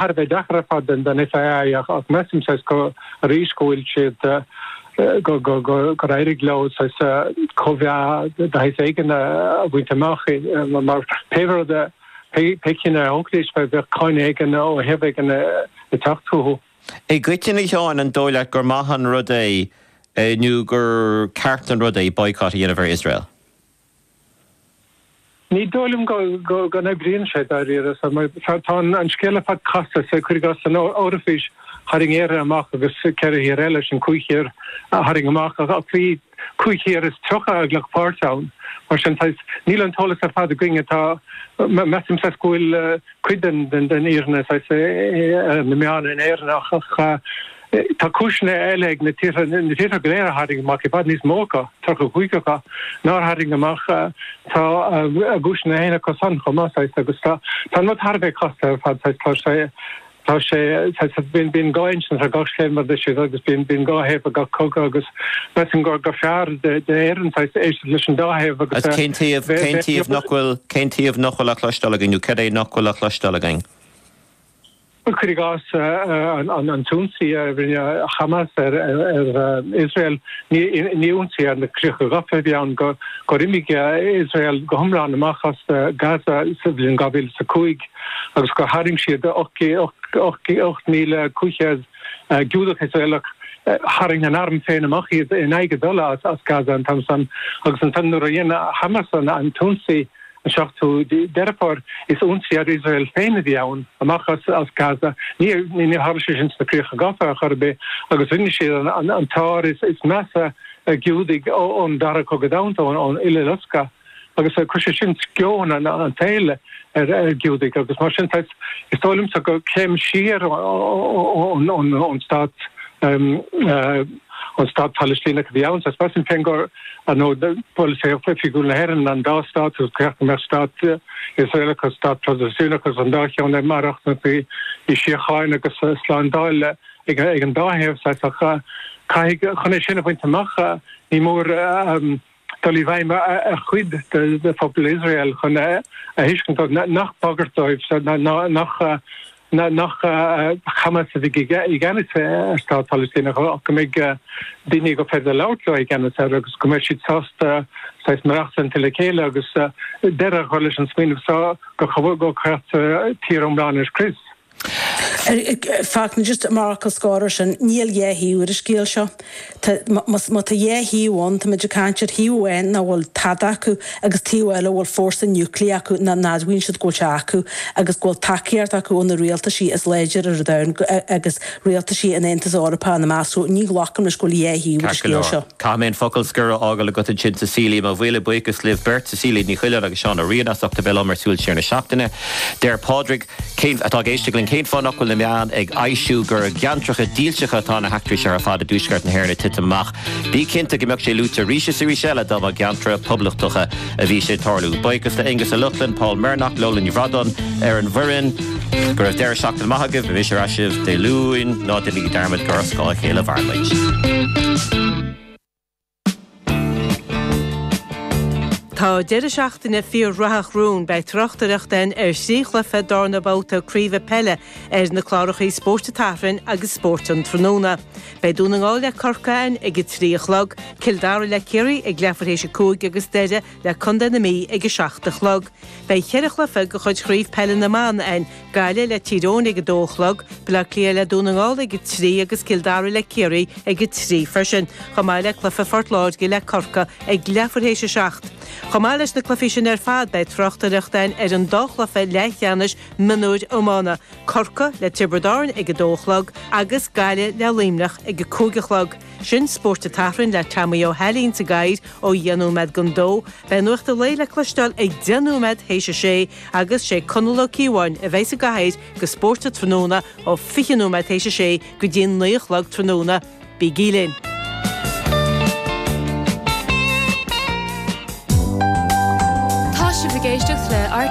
thar a bheith deacair ar fad don FAI ach measaim saghas go arís go bhfuil siad go go go gur éirigh leo saghas comhbhá de shaghas éigin a bhaint amach mar pé rud a pé cinneadh a thógfaidís bheadh cáineadh éigin ó thaobh éigin ag teacht chucu. I gcoitinne a Sheáin an dóigh leat gur maith an rud é nó gur ceart an rud é boycott a dhéanamh ar Iosrael? Ní dóigh liom go n-oibríonn sé dáiríre, saghas tá an scéal ar fad casta, saghas cuir i gcás, san Eoraifís tharraing Éire amach agus ceithre thír eile, sin cúig thír a tharraing amach ach bhí cúig thír is tríocha a ghlac páirt ann. Mar sin níl an t-eolas ar fad againn atá, measaim saghas go bhfuil cuid den fhírinne, sna meáin in Éirinn ach. Tá cúiseanna eile ag na tíortha go léir nár tharraing amach i bhfad níos mó acu, 35 acu, nár tharraing amach. Tá a gcúiseanna féin acu san chomh maith saghas agus tá an rud thar a bheith casta ar fad saghas. Tá sé, tá sé saghas, bíonn, bíonn dhá insint ar gach scéal mar a deir siad agus bíonn, bíonn dhá thaobh ar gach cogadh agus measaim gur, gur fearr d'Éirinn saghas éisteacht leis an dá thaobh agus Agus cén taobh, cén taobh nach bhfuil, cén taobh nach bhfuil á chloisteáil againn nó céard é nach bhfuil á chloisteáil againn? cuir i gcás, an t-ionsaí a rinne Hamas ar Iosrael, ní ionsaí ar na críocha gafa a bhí ann, gur imigh Iosrael go hiomlán amach as Gaza sa bhliain 2005 agus gur tharraing siad 8,500 Giúdach Iosraelach, tharraing an t-arm féin amach iad in aghaidh a dtola as Gaza an t-am san, agus ansan nuair a dhein Hamas an t-ionsaí An 7ú Deireadh Fómhair, is ionsaí ar Iosrael féinig a bhí ann, amach as Gaza. Níor tharla sé sin sna Críocha Gafa ar chor ar bith agus rinne siad an t-ár is measa ar Ghiúdaigh ón Dara Cogadh Domhanda, ón Uileloscadh, agus chuir sé sin sceon an tsaoil ar Ghiúdaigh. Agus mar sin, is dóigh liomsa gur céim siar ón stát. an Stát Palaistíneach a bhí ann. Sé seasamh Sinn Féin gur nó bhuel polasaí oifigiúil na hÉireann an dá stát agus ceart go mbeadh stát Iosraelach agus stát Palaistíneach agus an dá cheann ag maireachtaint i síocháin agus slándáil ag an dá thaobh. Saghas ach caithfidh chun é sin a bhaint amach ní mór dul i bhfeidhm ar chuid de phobal Iosrael chun a thuiscint nach bagairt dóibh saghas nach Hamas a bheidh i gceannas ar stát Palaistíneach ach go mbeidh daoine gur féidir labhairt leo i gceannas air agus go mbeidh siad sásta saghas maireachtaint le chéile agus deireadh a chur leis an smaoineamh saghas go go gcaithfí tír iomlán a scrios. fact, just mar fhocal scor ar sin, níl dhá thaobh ar an scéal seo. Tá, más, má tá dhá thaobh ann, táimid ag caint ar thaobh amháin nach bhfuil tada acu agus taobh eile a bhfuil fórsa niúclear acu nach n-admhaíonn siad go bhfuil sé acu agus go bhfuil tacaíocht acu ó na rialtaisí is láidre ar domhan agus rialtaisí an Aontais Eorpach ina measc. So, ní ghlacaim leis go bhfuil dhá thaobh ar an Ceart go scéal leor. seo. Caithfidh mé an focal scor a fhágáil agat ansin Cecilia. Mo mhíle buíochas libh beirt, Cecilia Ní Choileáin agus Seán Ó Riain as ucht a bheith liom ar Súil Siar na Seachtaine. Deir Pádraig. Cén, atá ag éisteacht linn, cén fáth nach bhfuil na meáin ag soilsiú gur i gceantracha dílseacha atá na heachtraí seo ar fad i dtuaisceart na hÉireann ag titim amach? Bí cinnte go mbeadh sé luaite arís is arís eile dá mba i gceantracha poblachtacha a bhí sé ag tarlú. Buíochas le Aonghus Ó Lochlainn, Paul Murnaghan, Lola Ní Bhradáin ar an bhfoireann. Go raibh deireadh seachtaine maith agaibh, beimid ar ais libh Dé Luain, ná déanaigí dearmad gur ar scáth a chéile a mhairimid. Tá deireadh seachtaine fíor-rathach romhainn. Beidh tráchtaireacht again ar thrí chluiche den dara babhta craobh peile ar na clárachaí Spórt an tSathairn agus Spórt an Tráthnóna. Beidh Dún na nGall le Corcaigh ann ag a trí a chlog, Cill Dara le Ciarraí ag leathuair théis a cúig agus Doire le Contae na Mí ag 7 a chlog. Beidh ceithre chluiche de chuid Chraobh Peile na mBan ann, Gaillimh le Tír Eoghain ag 2 a chlog, Baile Átha Cliath le Dún na nGall ag 3 agus Cill Dara le Ciarraí ag 3 freisin, chomh maith le cluiche Phort Láirge le Corcaigh ag leathuair théis a seacht. Chomh maith leis na cluichí sin ar fad, beidh tráchtaireacht ann ar an dá chluiche leathcheannais mionúir iomána, Corcaigh le Tiobraid Árann ag 2 a chlog agus Gaillimh le Luimneach ag 5 a chlog. sin Spórt an tSathairn le Teamaí Ó hAilín sa gcathaoir ó dheich nóiméad don dó. Beidh Nuacht a Lae le cloisteáil ag deich nóiméad théis a sé agus sé Conall Ó Cíobháin a bheidh sa gcathaoir do Spórt an Tráthnóna ó fiche nóiméad théis a sé go dtí'n naoi a chlog tráthnóna. Bígí linn. Tá sibh ag éisteacht le RTÉ